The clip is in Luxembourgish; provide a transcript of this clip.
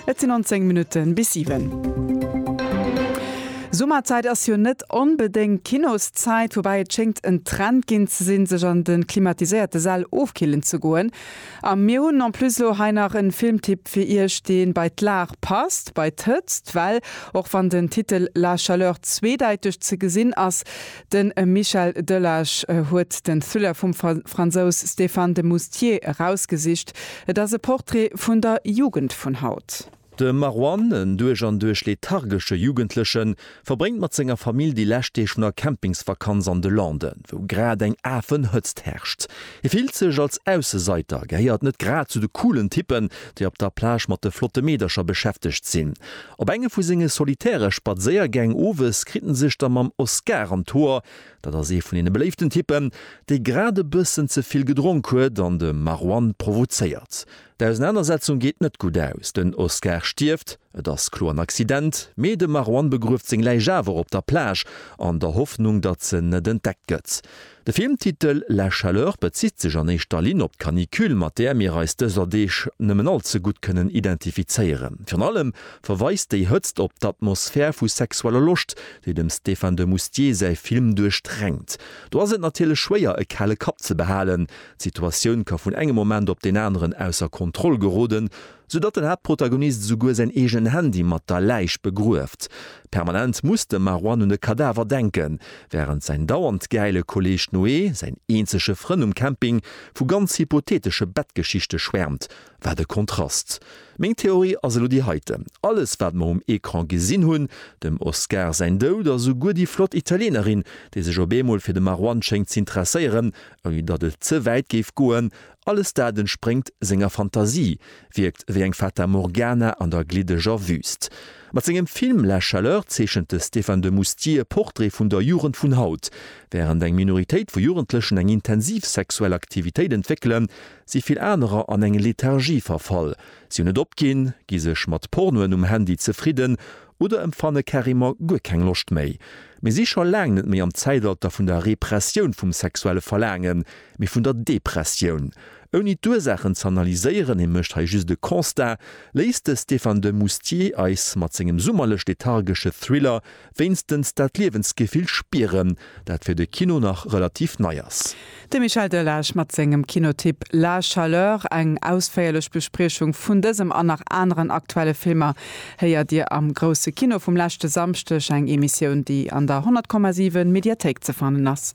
Et sinn 19 Minutten bis 7. Summerzäit ass jo net onbedéngt Kinoszäit, woubäi et schéngt en Trend ginn ze sinn, sech an de klimatiséierte Säll ofkillen ze goen. A mir hunn en plus elo hei nach en Filmtipp fir Iech, deen bei d'Lag passt, bei d'Hëtzt, well och wann den Titel La Chaleur zweedäiteg ze gesinn ass, De Michel Delage huet den Thriller vum Fransous Stéphane de Moustier erausgesicht. Et ass e Portrait vun der Jugend vun haut. De Marwan, en duerch an duerch lethargesche Jugendlechen, verbréngt mat senger Famill déi lescht Deeg vun der Campingsvakanz an de Landen, wou grad eng Afenhëtzt herrscht. Hie fillt sech als Ausseseiter, gehéiert net grad zu de coolen Typpen, déi op der Plage mat de flotte Meedercher beschäftegt sinn. Op enge vu senge solitäre Spadséiergäng owes kritt en sech da mam Oscar an d'Hoer, dat ass ee vun deene beléiften Typpen, dee grad e bëssen ze vill gedronk huet an de Marouane provozéiert. D'Ausenanersetzung geet net gutt aus, den Oscar stierft, et ass kloer en Accident, mee de Marouane begrueft seng Läich awer op der Plage, an der Hoffnung, datt se net entdeckt gëtt. De Filmtitel La chaleur bezitt sech an éischter Linn op d'Canicule, mat där mir eis dëser Deeg nëmmen all ze gutt kënnen identifizéieren. Virun allem verweist déi Hëtzt op d'Atmosphär vu sexueller Loscht, déi dem Stéphane de Moustier säi Film duerchdränkt. Do ass et natierlech schwéier, e kale Kapp ze behalen. D'Situatioun ka vun engem Moment op deen aneren ausser Kontroll geroden. sou datt den Haaptprotagonist esouguer säin eegenen Handy mat der Läich begrueft. Permanent muss de Marwan un de Kadaver denken, wärend säin dauernd gäile Kolleeg Noé, säin eenzege Frënn um Camping, vu ganz hypotheetesche Bettgeschichte schwäermt. Wat e Kontrast! Meng Theorie ass elo déi heiten, Alles wat mer um Ecran gesinn hunn, dem Oscar säin Doud a souguer déi flott Italienerin, déi sech op eemol fir de Marwan schéngt z'interesséieren, ouni datt et ze wäit géif goen, Alles dat entspréngt senger Fantasie, wierkt wéi eng Fata Morgana an der gliddeger Wüst. Mat sengem Film La Chaleur zeechent de Stéphane de Moustier e Portrait vun der Jugend vun haut. Wärend eng Minoritéit vu Jugendlechen eng intensiv sexuell Aktivitéit entwéckelen, si vill anerer an eng Lethargie verfall. Si hunn et opginn, gi sech mat Pornoen um Handy zefridden oder empfanne carrément guer keng Loscht méi. Mir si scho laang net méi am Zäitalter vun der Repressioun vum sexuelle Verlaangen, mee vun der Depressioun. Ouni d'Ursaachen ze analyséieren, hie mécht hei just e Constat, léisst de Stéphane de Moustier eis mat sengem summerlech-lethargesche Thriller wéinstens dat Liewensgefill spieren, dat fir de Kino nach relativ nei ass. De Michel Delage mat sengem Kinotipp La Chaleur. Eng ausféierlech Bespriechung vun dësem an nach aneren aktuelle Filmer héiert Dir am Grousse Kino vum leschte Samschdeg, eng Emissioun, déi an der 100,7 Mediathéik ze fannen ass.